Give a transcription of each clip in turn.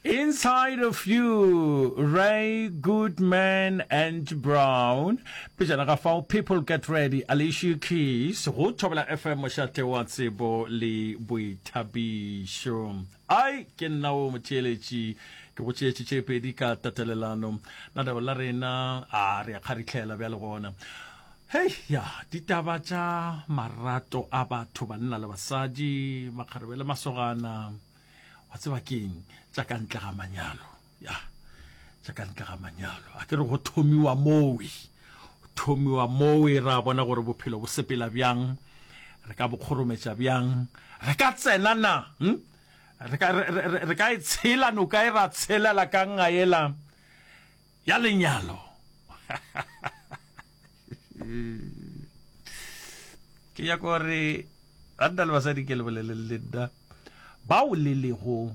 Inside of you, Ray Goodman and Brown. Pejana ga fao, People Get Ready, Alicia Keys, go Thobela FM, mošate wa tsebo le boithabišo. Ai, ke nna o motheeletši, ke go tšeetše tše pedi ka tatelelano. Na leo la rena, a re a kgaritlhela bjale gona. Hei ya ditaba tša marato a batho banna le basadi makgarebe le masogana wa tseba ke eng tša ka ntle ga manyalo ya tša ka ntle ga manyalo a ke re go thomiwa mowe thomiwa mowe ra bona gore bophelo bo sepela bjang re ka bokgorometša bjang re ka tsena na hm? re ka e tshela noka e ra tshelela ka ngaela ya lenyalo ke ya gore banna le basadi ke le boleleng le nna bao le lego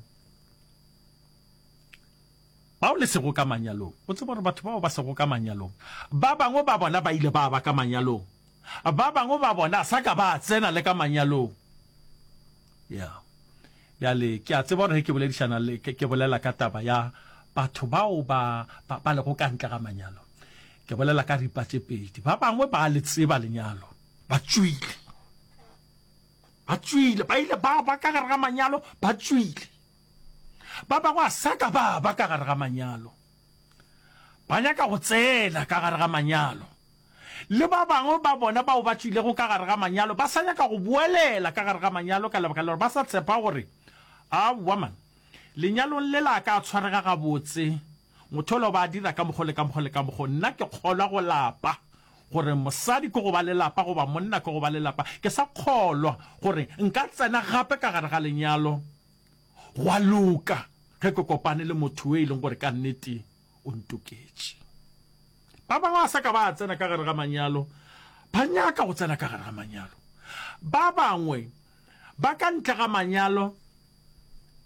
bao le sego ka manyalong o tseba gore batho bao ba sego ka manyalong ba bangwe ba bona ba ile ba ba ka manyalong ba bangwe ba bona sa ka ba tsena le ka manyalong Ya. Bjale, ke a tseba gore ge ke boledišana le, ke, ke bolela ka taba ya batho bao ba, ba, ba lego ka ntle ga manyalo. Ke bolela ka ripa tše pedi. Ba bangwe ba le tseba lenyalo. Ba tšwile. Ba tšwile. Ba ile ba ba ka gare ga manyalo, ba tšwile. Ba bangwe a sa ka ba ba ka gare ga manyalo. Ba nyaka go tsena ka gare ga manyalo. le ba bangwe ba bona bao ba tšwilego ka gare ga manyalo ba sa nyaka go boelela ka gare ga manyalo ka lebaka la gore ba sa tshepa gore, Aowa man, lenyalong lela a ka a tshwarega gabotse, motho yola o ba a dira ka mokgo le ka mokgo le ka mokgo. Nna ke kgolwa go lapa, gore mosadi ke go ba le lapa goba monna ke go ba le lapa. Ke sa kgolwa gore nka tsena gape ka gare ga lenyalo gwa loka ge ke kopane le motho yo e leng gore ka nnete o ntoketše. Ba bangwe ba sa ka ba tsena ka gare ga manyalo, ba nyaka go tsena ka gare ga manyalo. Ba bangwe ba ka ntle ga manyalo,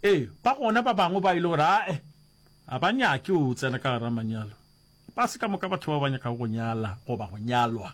e ba gona ba bangwe ba ile gore ae a ba nyake o tsena ka gare ga manyalo. Ba se ka moka batho ba ba nyakago go nyala goba go nyalwa.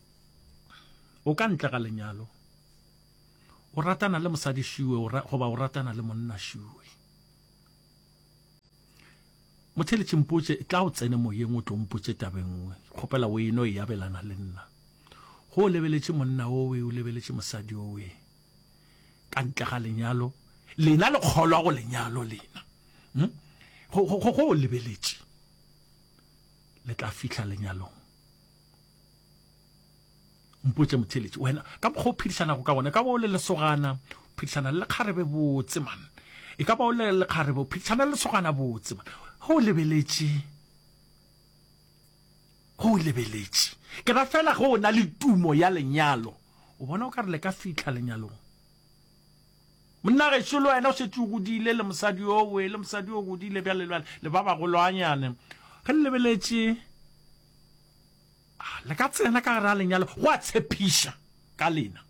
o ka ntle ga lenyalo o ratana le mosadi šiwe goba o ratana le monna šiwe motheletši mpotše tla o tsene moyeng o tlo mpotše tabengwe kgopela o eno e abelana le nna go o lebeletše monna owe o lebeletše mosadi owe ka ntle ga lenyalo lena le kgolwa go lenyalo lena hmm? go o lebeletše le tla fihla lenyalong mpotše motheletši wena ka mokgwa o phedišanago ka gona e ka ba o le lesogana o phedišana le lekgarebe botse man e ka ba o le lekgarebe o phedišana le lesogana botse man go o lebeletše go o lebeletše ke ra fela go o na le tumo ya lenyalo o bona o ka re le ka fitlha lenyalong monna gešo le wena o šetše o godile le mosadi yo o e le mosadi yo o godile bjale le ba bagolwanyane ge le lebeletše Le ka tsena ka gare a lenyalo, go a tshepiša ka lena,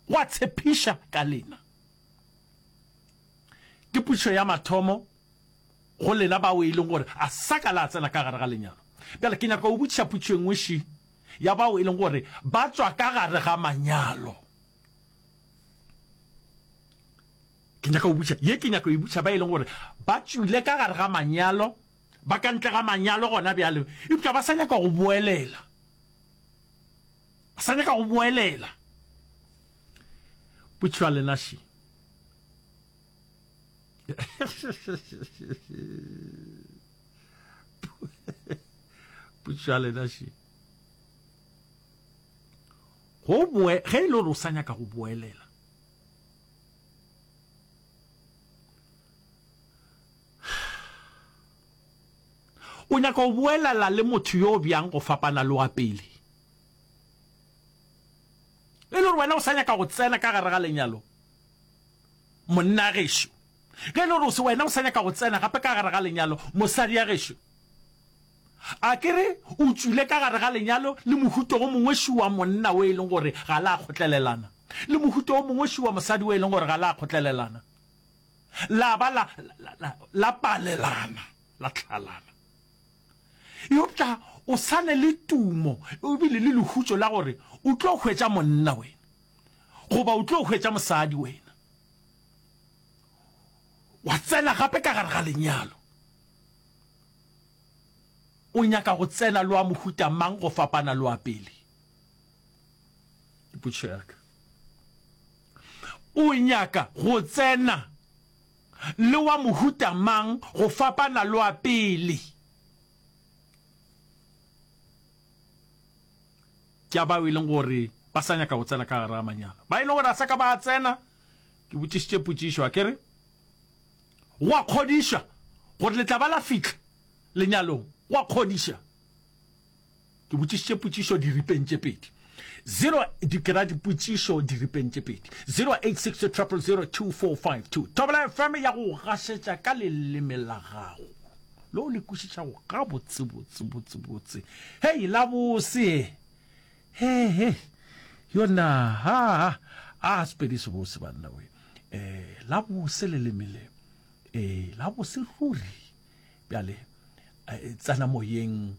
go a tshepiša ka lena. Ke pušo ya mathomo go lena bao e leng gore a sa ka la tsena ka gare ga lenyalo. Bjale ke nyaka go botšiša pušo e nngwe ši ya bao e leng gore ba tswa ka gare ga manyalo. Ke nyaka go botšiša ye, ke nyaka go e botšiša ba e leng gore ba tšwile ka gare ga manyalo. ba ka ntle ga manyalo gona bjale, eupša ba sa nyaka go boelela, ba sa nyaka go boelela. Butšwa lenaši. Butšwa lenaši. Go boe, ge e le gore o sa nyaka go boelela, O nyaka go boelela le motho yo bjang go fapana le wa pele? E le gore wena o sa nyaka go tsena ka gare ga lenyalo, monna gešo? Ge e le gore wena o sa nyaka go tsena gape ka gare ga lenyalo, mosadi ya gešo? A ke re o tšwile ka gare ga lenyalo le mohuto o mongwe šu wa monna o e leng gore ga la kgotlelelana, le mohuto o mongwe šu wa mosadi o e leng gore ga la kgotlelelana? la ba la, la, la, la palelana, la tlhalana. Eupša o sa ne le tumo ebile le lehutšo la gore o tlo hwetša monna wena goba o tlo hwetša mosadi wena. Wa tsena gape ka gare ga lenyalo. O nyaka go tsena loa mohuta mang go fapana loa pele? Ke putšo ya ka. O nyaka go tsena le wa mohuta mang go fapana le wa pele? Ke a bao e leng gore ba sa nyaka go tsena ka gare ga manyalo, ba e leng gore a sa ka ba a tsena. Ke botšišitše potšišo a kere, Go a kgodiša gore le tla ba la fihla lenyalong? Go a kgodiša. Ke botšišitše potšišo diripeng tše pedi. Zero di kera dipotšišo diripeng tše pedi. 0860002452 Thobela FM ya go gašetša ka leleme la gago le o le kwešišago gabotsebotse botsebotse. Hei la bose he he yona ha a sepedi se bose banna we eh la bose leleme le eh la bose ruri bjale eh, tsena moyeng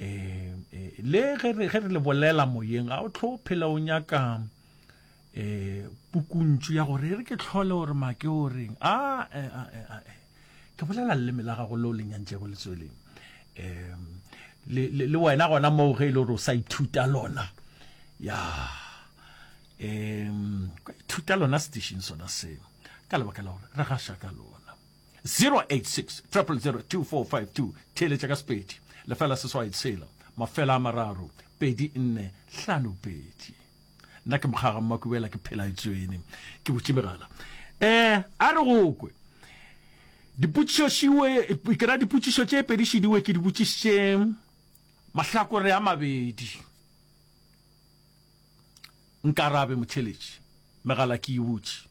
um le ge re le bolela moyeng ga o tlho o phela o nyaka um pukuntšu ya gore e re ke tlhole gore make o reng a ke bolela leleme la gago leo lenyantsego le tsweleng um le wena gona moo ge e le gore o sa ithuta lona ya um ithuta lona station sona seo ka lebaka la gore re gaša ka lona 0860002452 theeletša ka sepedi lefela seswai tshela mafela a mararo pedi nne hlano pedi nna ke mokgaga mmakubela ke phela etswene ke botše megala um a re go kwe dipotšišošiwe ke ra dipotšišo tše pedišidiwe ke di botšišitše mahlakore a mabedi nkarabe motheletši megala ke e butše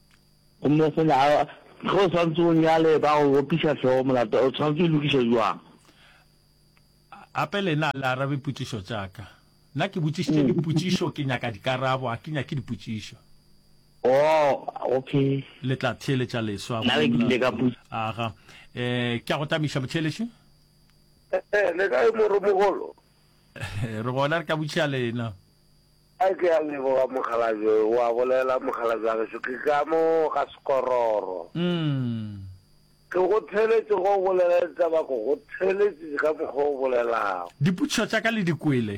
Go mosola a re, Ge o swantse o nyale ba go opiša hlogo molato, o tshwanetse o e lokiša bjang? Gape le yena a le arabe potšišo tša ka. Nna ke botšišitše dipotšišo, ke nyaka dikarabo, ga ke nyake dipotšišo. Oh, okay. Le tla theeletša leswa go molato. Nna ke ile ka botša. Aga. Ee, ke a go tamiša, motheeletši. Ee, le kae, Moromogolo? Re gona, re ka botšiša le yena. A ke a leboga mokgalabje, o a bolela mokgalabje wa gešo, ke ka mo ga sekororo. Umm. Ke go theeletše ge o bolela ditaba ko go theeletše ka mokgwa o bolelago. Dipotšišo tša ka le di kwele.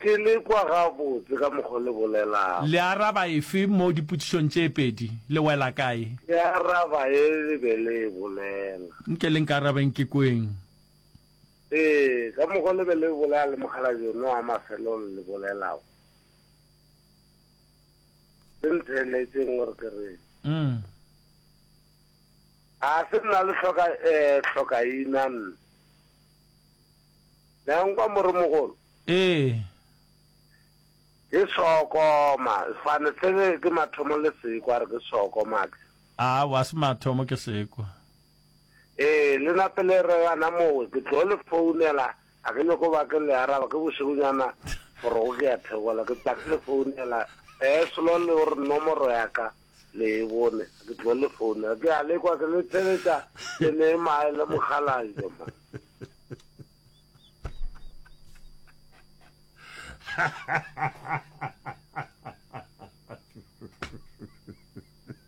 Ke le kwa gabotse ka mokgwa le bolelago. Le araba efe mo dipotšišong tše pedi? Le wela kae? Ke araba ye le be le e bolela. Nke le nkarabeng ke kweng. Ee, ka mokgwa le be le bolela le mokgalabje yono wa mafelong le bolelago. Se ntheeletšeng gore ke re. Mm. A se nna le hloka eh hlokaina nna. Nyankwa moromogolo. Ee. Ke sokoma, fane tsebe ke mathomo le sekwa re ke sokoma. A wa se mathomo ke sekwa. Ee, le na pele re gana mowe, ke tlo le founela, ga ke nyoko ba ke le araba, ke bošegonyana forogo ke ya thegola, ke tla ke le founela, ee, selo le o re nomoro ya ka le e bone, ke tlo le founela, ke a lekwa ke le theletša le ne mae le mokgalajwa ma.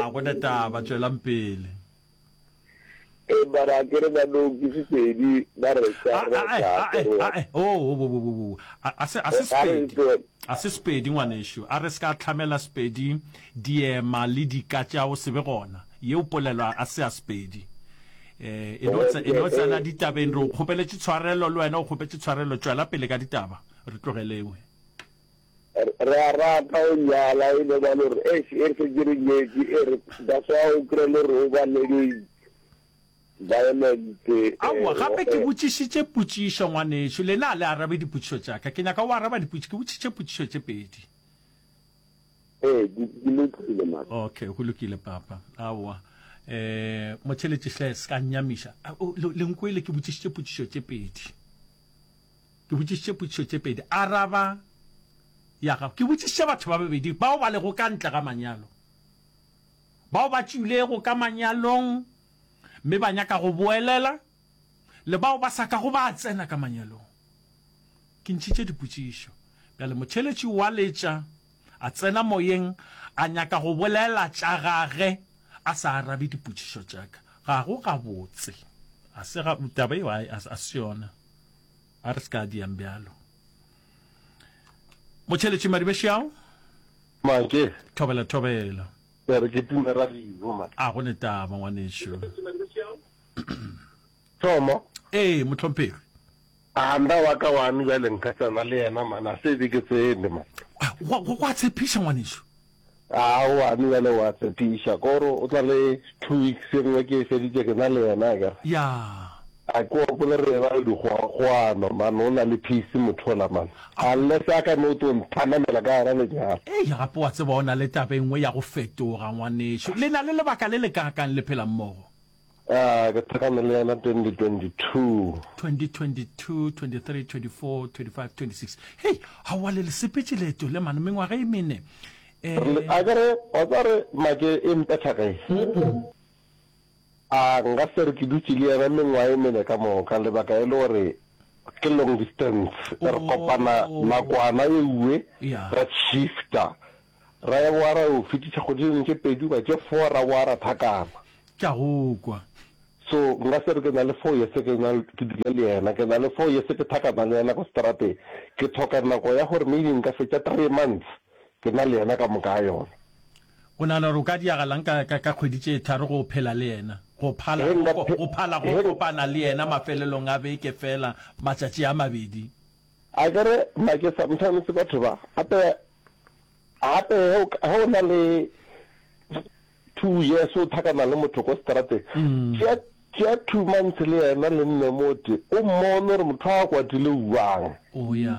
a go na taba tswelang pele e bara ke re ba no ke sepedi ba re sa re sa ke re o o o o a se a se sepedi a se sepedi ngwanesho a re se ka tlhamela sepedi diema le dika tša o sebe gona ye o polelwa a se a sepedi eh e no tsa e no tsa la ditabeng re o kgopeletše tshwarelo le wena o kgopetse tshwarelo tšwela pele ka ditaba re tlogelewe Re a rata o nyala e be ba lo re eish e re se ke re nyetše e re that's why o kry lo re o ba lengeng violent Aowa gape ke botšišitše potšišo ngwanešu lena a le arabe dipotšišo tša ka ke nyaka o araba dipotši ke botšišitše potšišo tše pedi. Ee di di lokile man. Okay go lokile papa aowa eh motheletši hle se ka nnyamiša le nkwele ke botšišitše potšišo tše pedi. Ke botšišitše potšišo tše pedi. Araba ya gago. Ke botšišitše batho ba babedi bao ba lego ka ntle ga manyalo, bao ba tšwilego ka manyalong mme ba nyaka go boelela le bao ba sa kago ba tsena ka manyalong. Ke ntšhitše dipotšišo. Bjale motheeletši o a letša, a tsena moyeng, a nyaka go bolela tša gage a sa arabe dipotšišo tša ka. Ga go gabotse. Ga se ga, taba eo a, a, a se yona. a re se ka diyang bjalo motšheletši madibešao make thobela thobela ya re ke tume radio make a go ne taba ngwanešo thomo ee motlhomphegi a nda wa ka wano bjale nka tsena le yena mana se be ke tsene ma go a tshepiša ngwanešo Aowa, mme bjale o a tshepiša. Ko re o tla le two weeks e nngwe ke e feditše ke na le yena a kere. Yeah. A ke opole re eba le dikgoagano man o na le peace motho ola man. Unless a ka no tlo nthanamela ka gona lenyalo. Eya gape wa tseba o na le taba e nngwe ya go fetoga ngwanešu. Le na le lebaka le le kaakang le phela mmogo? Ah, ke thekane le yena 2022. 2022, 23, 24, 25, 26. Hei, ga wa le le sepetše leeto le mane mengwaga e mene. Eh, Re le- A ke re, wa tseba re make e mpetha ge. A nka se re ke dutše le yena mengwaga e mene ka moka, lebaka e le gore ke long distance. Re kopana Oh. nakwana e uwe, Yeah. ra shifta. Raeboara o fetiša kgodinyane tše pedi goba tše four ra boara thakana. Ke a go kwa. So nka se re ke na le four years ke na ke dula le yena, ke na le four years ke thakana le yena ko strateng. Ke thoka nako ya gore maybe nka fetša three months ke na le yena ka moka ga yona. O nagana gore o ka diragalang ka ka ka kgwedi tše tharo go phela le yena, go phala He go nka ko- phe- go phala go he- kopana le yena mafelelong a beke fela matšatši a mabedi? Akere make sometimes batho ba apeya gape ge o na le two years o thakana le motho ko strateng tšea tšea two months le yena le nne mote o mmone gore motho a kwatile uang oya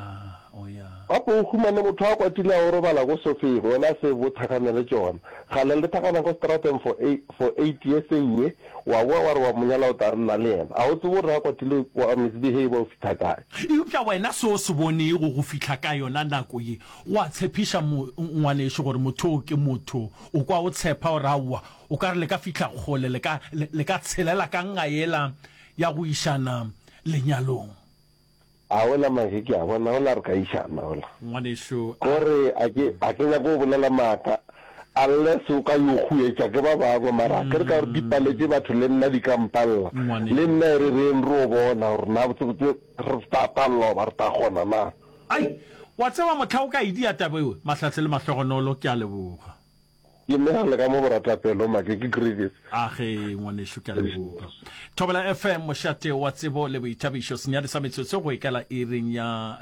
oya gape o humane motho a kwatile a o robala ko sofeng wena se bo thakane le tsona gale le thakana ko strateng for eight, for eight years e nngwe O a boa wa re wa mo nyala o tla nna le yena. A o tsebe gore a kwatile o a misbehave o fihla kae? Eupša wena se o se bonego go fihla ka yona nako ye, go a tshepiša mo, ngwanešu, gore motho yoo ke motho. O kwa o tshepa gore, Aowa, o ka re le ka fihla kgole, le ka, le, le ka tshelela ka nga yela ya go išana lenyalong. A ola mahe ke a bona ola re ka išana ola. Ngwanešu a. Go re a ke a ke nyake go bolela maaka unless o ka yo huetša ke ba bangwe mara akere ka gore di paletše batho le nna di ka mpalla le nna e re reng re o bona gore na botsebotse re sta palla goba re ta kgona na. Ai! Wa tseba mohla o ka e dia taba eo, Mahlahle le Mahlogonolo, ke a leboga. Ke nea le ka mo boratapelo make ke Griffith. A ge ngwanešu, ke a leboga. Thobela FM, mošate wa tsebo le boithabišo, senyadi sa metsotso go ikela iring ya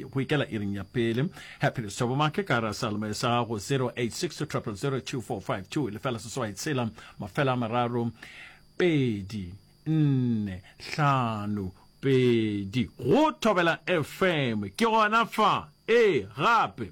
go ikela iring ya pele. Happiness Thobo Make ka ra salome sa gago 0862000245 lefela seswai tshela mafela a mararo pedi nne hlano pedi go Thobela FM ke gona fa e gape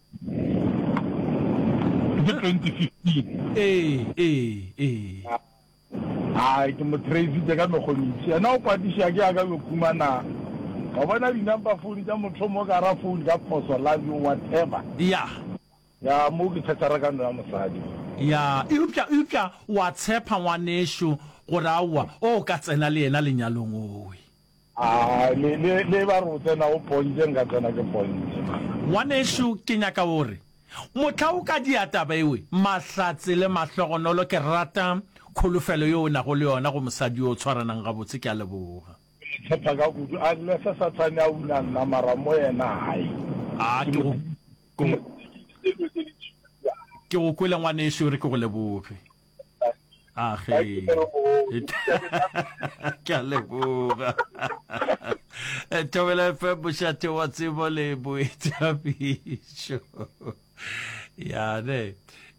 ke 2015 ee ee ee a ke mo traisitse ka mekgonisi ena o kwatiša ke aka yo khumana wa bona di-number phone tša motho mo ka ra phone ka phoso love you whatever ya ya mo ke thatara ka no ya mosadi ya eupša eupša wa tshepa ngwanešo gore aowa o ka tsena le yena lenyalong owe A le, le, le ba re o tsena o pontše, nka tsena ke pontše. Ngwanešu, ke nyaka o re, mohla o ka dia taba ewe, Mahlatse le Mahlogonolo, ke rata kholofelo yeo o nago le yona go mosadi yo o tshwaranang gabotse. Ke a leboga. Ke le tshepa ka kudu. Unless Sathane a una nna, mara mo yena hai. A ke go, ke go, ke go kwele ngwanešu, e re ke go leboge. age ke a leboga eh, thobela fe bošate wa tsebo le boithabišo yane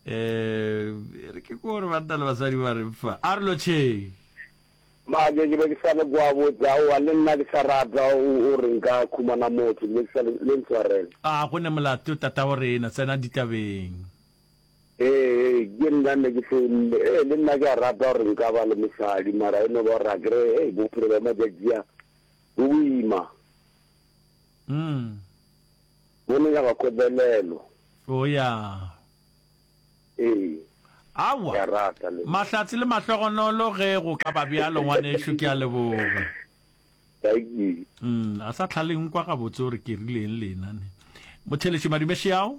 um re ke kore banna le basadi ba re fa a re lotšheng maje ke be ke sa le kwa botsa oa le nna ke sa rata o re nka khumana motho ke be ke sa le ntshwarele a go ne molato tata go rena tsena ditabeng Ee, ke nna nne ke founne. Ee, le nna ke a rata gore nka ba le mosadi, mara e no ba gore a kere hei bophelo bja matšatši a bo boima. Mm. Bo no nyaka kobelelo. O ya. Ee. Awa. Ke a rata le. Mahlatse le mahlogonolo ge go ka ba bjalo ngwanešu ke a leboga. Thank you. Mm, a sa tlhaleng kwa gabotse gore ke rileng lena ne. Motheletši Madimešiao.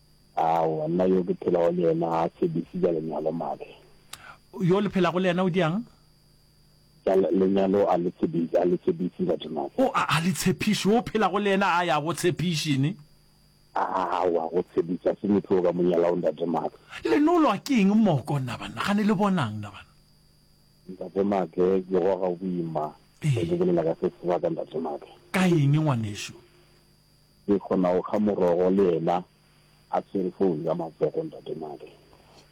Aowa, nna yo ke phelago le yena ga a tshedisi tša lenyalo, Mage. Yo le phelago le yena o diang? Tša lenyalo a le tshedisi, a le tshepiši batho, Mage. O, a, a le tshepiši. Yo o phelago le yena a ya go tshepiši, ne? Aowa, go tshepiši ga se motho o ka mo nyalago, Ntate Mage. Le nolwa ke eng moko, nna banna? Gane le bonang, nna banna? Ntate Mage, ke goga boima ge ke bolela ka se sebaka, Ntate Mage. Ka eng, ngwanešu? Ke kgona go kga morogo le yena a tshwere founu ka matsogo, Ntate Made.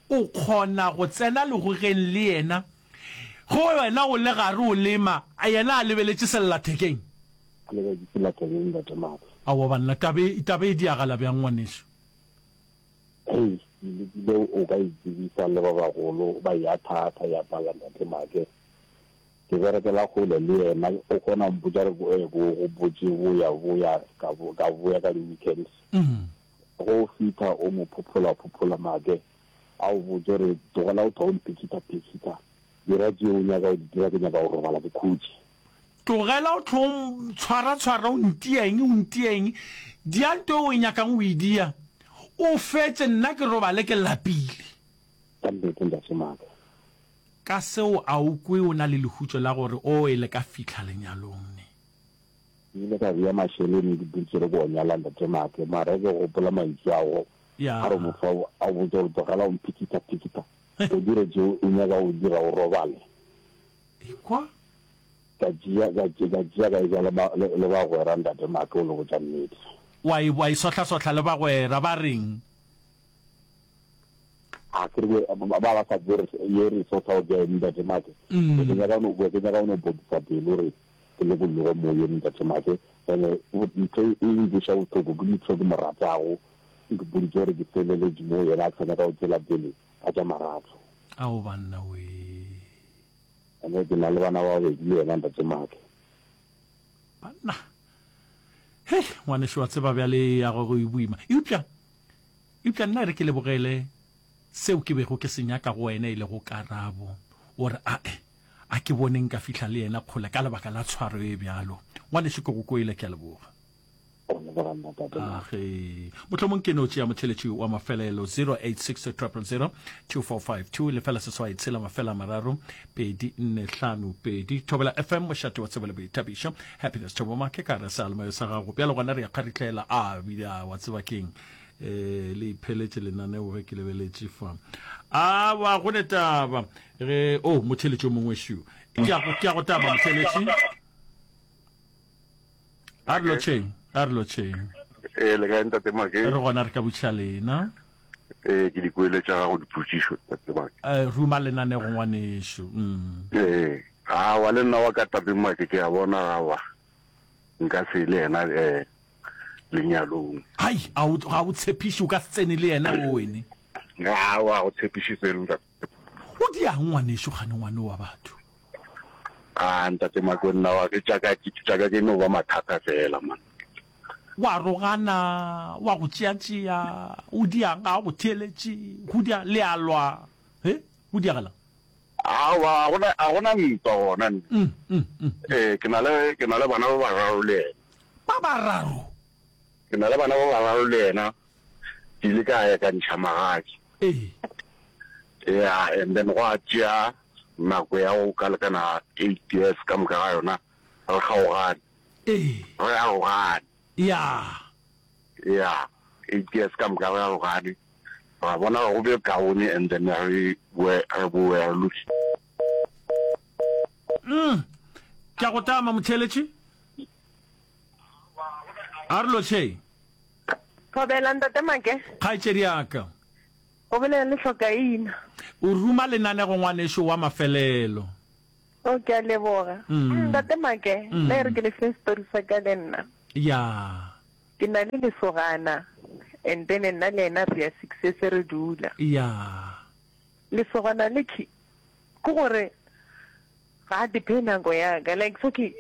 O kgona go tsena legogeng le yena ge wena o le gare o lema, yena a lebeletše sellathekeng? A lebeletše sellathekeng, Ntate Made. Aowa banna, taba e, taba e diagala bjang ngwanešu? Hei, ke lekile o ka e tsebisa le ba bagolo, ba e athaathha ya pala, Ntate Made. Ke berekela kgole le yena, o kgona go mpotša re go go botše boya boya ka ka boya ka di-weekends. Ge o fitha o mo phophola phophola make a o botše re tlogela go thwa o mphikitha phikitha, dira tše o nyaka go di dira ke nyaka go robala ke khutše. Tlogela go thwa o ntshwara tshwara o ntia eng o ntia eng, dia nto eo o e nyakang go e dia o fetše nna ke robale ke lapile. Ka nnete ntate Maka, Ka seo a o kwe o na le lehutšo la gore o e le ka fihla lenyalong ne? Ke ile ka bea mašeleni le bursary go nyala Ntate Maake, mara ke gopola mantšu a go Ya. a re mofao a o botša gore tlogela go mphikithaphikitha, o dire tšeo o nyakago go di dira o robale. Ekwa. Ka tšea, ka tšea, ka tšea ka eja le ba, le, le bagwera Ntate Maake o le botša nnete. Wa e, wa e sohlasohla le bagwera, ba reng? a ke re ba ba sa bore ye re so tsa o ja enda ke make mm. ke nya ka no ke nya ka no bo tsa pelo re ke le go lego mo ye enda ke make ene o ntse e le go shawo tlo go ke tlo go moratago ke bo di gore ke felele di mo yena tsena ka o tsela pele a ja maratso a o banna we ene ke na le bana ba be di yena nda ke make banna he ngwane shwa tseba bjale ya go go ibuima eupša Eupša nna e re ke lebogele seo ke bego ke se nyaka go wena, e lego karabo. O re, A-e, a ke bone nka fihla le yena kgole ka lebaka la tshwaro e bjalo. Ngwanešu, ke go kwele. Ke a leboga. Age. Mohlomong ke no tšea motheletši wa mafelelo, 086 000 2452, lefela seswai tshela mafela a mararo, pedi nne hlano pedi thobela fm mošate wa tsebo le boithabišo happiness thoboma ke ka re sealemayo sa gago bjalo gona re ya kgaritlela a bida wa tseba keng eh le ipheletše lenaneo ge ke lebeletše fa a ba go ne taba ge o oh, motheletši o mongwe shu ke ya go taba motheletši a re lotšheng a re lotšheng ee le kae ntate make re gona re ka botšiša lena ee ke dikwele tša gago dipotšišo ntate make Eh, ruma lenanego ngwanešu mm. ee gawa le nna wa ka tate make ke a bona gawa nka se le yena um lenyalong hai a o- ga o tshepiše o ka se tsene le yena o wene gawa go tshepišitse le ntate O dia'ng ngwanešu kgane ngwane wa batho? Aa ntate Makonna wa ke tša ka tša ka ke no ba mathata fela man. Wa rogana, wa go tšeatšea, o dia'ng ga a go theeletše, go dia le a lwa he go diagalang? Aowa a gona a gona ntwa gona nna. Mm, mm, mm. Ee ke na le ke na le bana ba bararo le yena. Ba bararo? Ke na le bana ba bararo le yena. ke ile ka ya ka ntšha magadi ya and then go a tšea nako ya go ka lekana eight years ka moka ga yona re kgaogane re arogane ya ya eight years ka moka re arogane ra bona go be kaone and then re boe re boe re lutse mm ke go tama motheletše a re lo tšheng Thobela, Ntate Make. Kgaetšediaka. O bolela le Hlokaina. O ruma lenaneo ngwanešu wa mafelelo. O, ke a leboga. Ntate Make, nna e re ke le fe setori sa ka le nna. Ya. Ke na le lesogana, and then nna le ena re ya six se re dula. Ya. Lesogana le ke gore ga a dephe nako ya ka, like so ke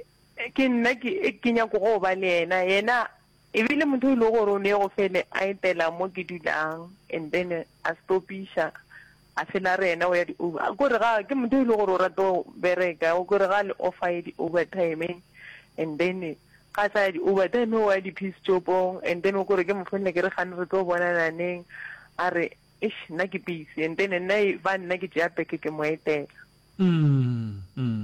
ke nna ke ke nyako go ba le yena, yena E be e le motho e le gore o ne go fele a etela mo ke dulang and then a stopiša a fela re ena o ya di over gore ga ke motho e le gore o rata go bereka o gore ga le offer ye di over time and then ga sa ya di over time o ya di peace job-ong and then o gore ke mo founela ke re gane re tlo bonana neng a re Eish nna ke busy and then nna e ba nna ke tšea beke ke mo etela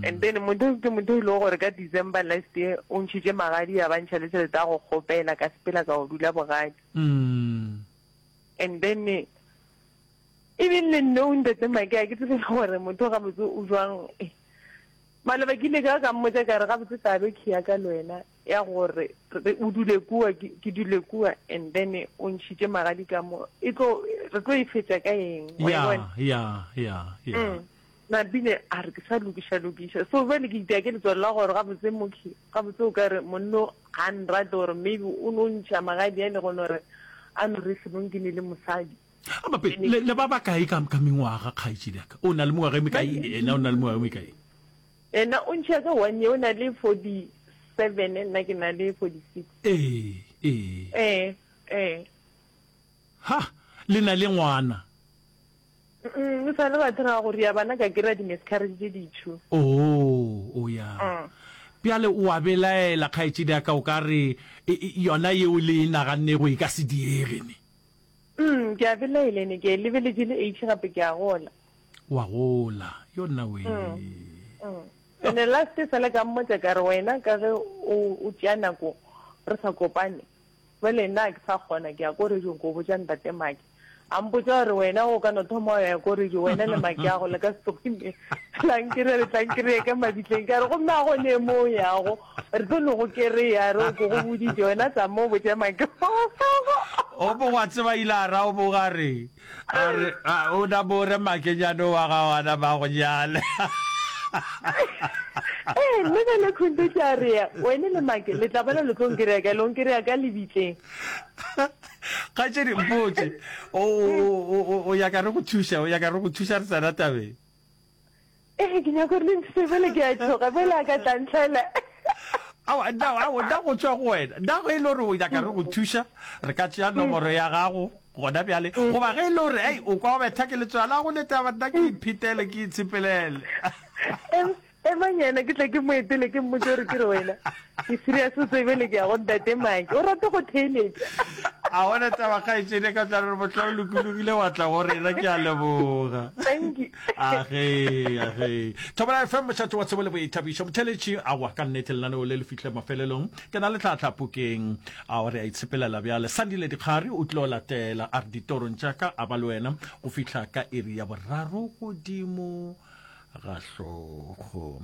and then motho ke motho e lego gore ka december last year o ntšhitše magadi ya ba ntšha le tšhelete ya go kgopela ka sepela ka go dula bogadi and then even le nno o ntate make a ke tsebe gore motho gabotse o jwang eh, maloba ke ile ka ka mmotsa ka re gabotse tabe ke ya ka le wena ya gore re o dule kua ke dule kua and then o ntšhitše magadi ka mo e tlo re tlo e fetša ka eng ya ya ya ya mm. nabile a re ke sa lokiša lokiša so bjale ke itea ke letswalo la gore gabotse mokhi gabotse o ka re monno ga nrate gore maybe o no ntšha magadi a le gone gore a no re sebong ke ne le mosadi abape ah, le ba ba kae ka mengwaga kgaetšediaka o na le mengwaga e mekae ena o na le mengwaga e mekae Yena o ntšhia ka one year, o na le forty seven, nna ke na le forty six. Ee, ee. Ee, ee. Ha, le na le ngwana? Mm-mm, e sa le ba thera go ria bana, ka kry-a di-miscarriage tše di two. Oo, o ya. Mm. Bjale o a belaela, kgaetšedi ya ka, o ka re e, e, yona yeo le e nagannego e ka se diege ne. Mm, ke a belaela ne, ke e lebeletše le age gape ke a gola. wa gola yo nna we ene mm, mm. last sale ka mmotsa ka re wena ka ge o tšea nako re sa kopane bale nna ke sa kgona ke ya ko rejong ko botsa ntate make a mpotsa gore wena o ka no thoma ya ko rejo wena le make ya go le ka setlogime tlankire re tlankire ka mabitleng ka re gomme a go ne mo yago re tlo no go kereya re o ko go boditse wena tsa mo botsa make o bo wa tseba ile a ra o bo ga re a re a o na bore makenyane wa ga wana ba go nyale ee mme ka le khonto ke a rea wene le make le tla bana le tlo nkerea ka long kerea ka lebitleng kgatšedi mpotse o ya ka re go thuša o ya ka re go thuša re tsena tabeng ee ke nyako re le nthuse bele ke a tšhoga bele a ka tlantlhela da go tswa go wena da go e le gore o nyaka re go thuša re ka tšea nomoro ya gago gona bjale mm. goba ge e le gore ei o kwa o betha ke letswala go leta banna ke iphetele ke itshepelele emanyana ke tla ke moetele ke mmotse gore ke re wena Ke serious o tsebe le ke a go ntate Maki. O rata go theeletša. A bona taba kgaetšedi ka tla re bohla o lokologile wa tla go rena ke a leboga. Thank you. A ge a ge. Thobela FM mošate wa tsebo le boithabišo motheletši a wa ka nnete lenaneo le le fihle mafelelong. Ke na le tlhatlha pokeng. A o re a itshepelela bjale. Sandile Dikgari o tlo latela a re ditorong tša ka a ba le wena go fihla ka iri ya boraro godimo ga hlogo.